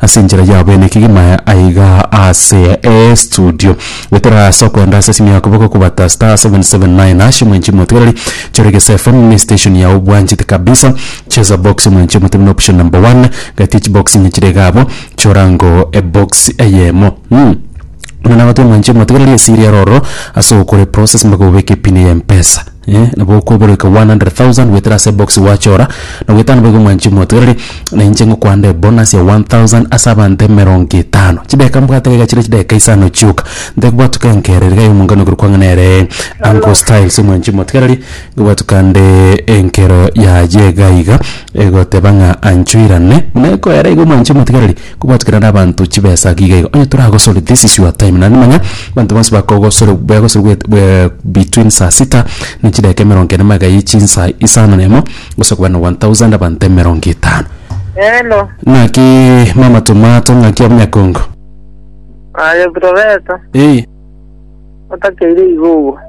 Ase enchera yabo ene kegima aiga ase estudio goetera ase okoenda ase esimi ya koboko kobata *779 hash omwenchi omotigereri chore gese FM ne station yao obwanchete kabisa cheza box omwenchi omotebini option number one gati echibox ime chire iga abwo chora ango ebox eyemo mm. Buna nagote omwenchi omotigereri esiri eroro ase ogokora eprocess mpaka obeke epini ya mpesa eh, nabo okoiboreka 100,000 goetera ase ebox gwachora, na goetera nabo igo mwanchi motogereri, na inche ngokwande ebonus ya 1,000 ase abanto emerongo etano. Chidakika mbwate iga chire chidakika isano chioka, ntekobwatuka enkera iga y'omongani okorokwa ang'e nere Uncle Styles mwanchi motigereri, nkobwatuka nde enkero yaye iga iga egoteba ng'a anchoirane, buna ekoera igo mwanchi motigereri. Kobwatwa kera nabanto chibesa giga iga onye toragosore this is your time naende manya abanto bonsi bakogosore begosore bwet bwe between saa sita na chidakika emerongo ene magega ye chinsa isano na emo gosa kobana one thousand abanto emerongo etano Hello. ng'aki mama tomato ng'aki omunyakongo Aye Professor. eyi otakeire igogwa.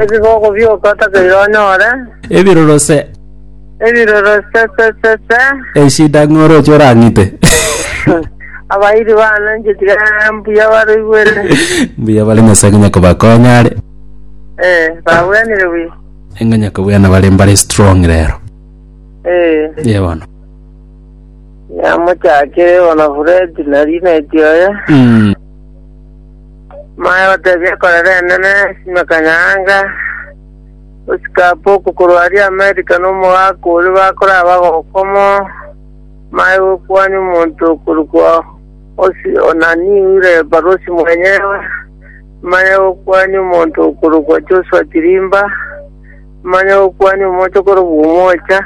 Ebigogo bioka otakeire onyore. Ebiroro se. Ebiroro se se se se. Eshida ng'oro oche orang'ite. Abairi bane inche tiga mbuya baroigwere. Mbuya bare Nyasae ng'a nyakobakonya are. Eh, babwenire buya. Ng'a nyakobwana bare mbare strong rero. Eh. Ye bono. Yamochakire igo na Furedi na Rineti oye, Mm. maya gotebia ekorera enene sime kanyaanga, gosika apa oko korwa aria Amerika na omogaka oria bakoraba gokomo, maya gokwani omonto okorokwa Osi Onani oire ebarosi mwenyewe, maya gokwani omonto okorokwa Joshua Chirimba, maya gokwani omocha okorokwa Omocha,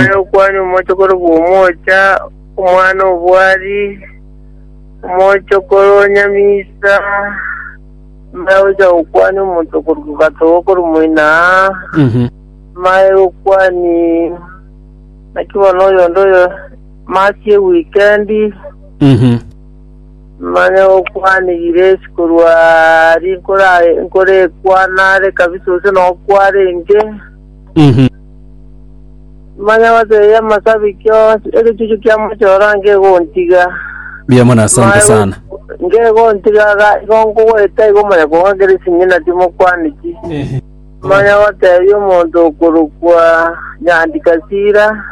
Aye okwania omochokoro bw'omoocha, omwana obwari, omochokoro onyamisa, mbae ocha gokwania omochokoro gatogo korwa omoina aa, mbae okwani naki bono oyonde oyo masi ewikendi, manye okwani giresi korwa aria nkora- nkorekwana are kabisa gose nokware inche. Mhm. Manya bateye y'amasabiki onsi egechuchu kia mochoro nkegontiga. Mbuya mono, asante sana. Nkegontiga ga igo nkogoeta igo manya kong'akera esing'ina timokwana ki. Manya batebia omonto okorokwa Nyandi Kasira.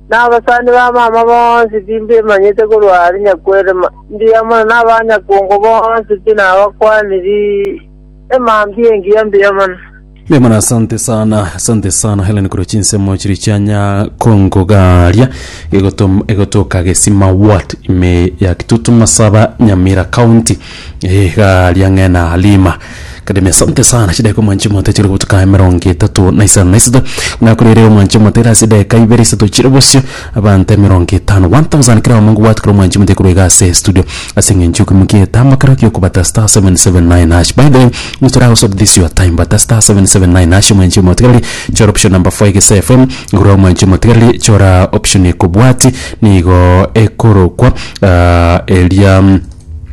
N'abasani ba mama bonsi timbemanyete korwa are nyakwere ma- mbuya mono, n'abanyakongo bonsi tinabakwaniri Emambia engiya mbuya mono. Mbuya mono asante sana asante sana helen korwa chinsemo chiri chianya kongogaria egotom- egotoka gesima wat ime ya kitutu masaba nyamira county Eh, garia ng'ena halima kademi asante sana chideko mwanchi mote chiri gobutuka emerongo etato na isano na isato nakorere omwanchi mote ase edeka ibere isato chire bosio Abanto emerongo etano, 1000, keraomo ngobwate kera omwanchi omote korwa iga ase estudio ase eng'encho y'ekeomi ki'egetambo kero gi'okobata *779#. By the way, nigo toragosoria this your time, bata *779# omwanchi omotigereri, chora option number 4 egesae FM, igurera omwanchi omotigereri, chora option ekobwati, nigo ekorokwa eria.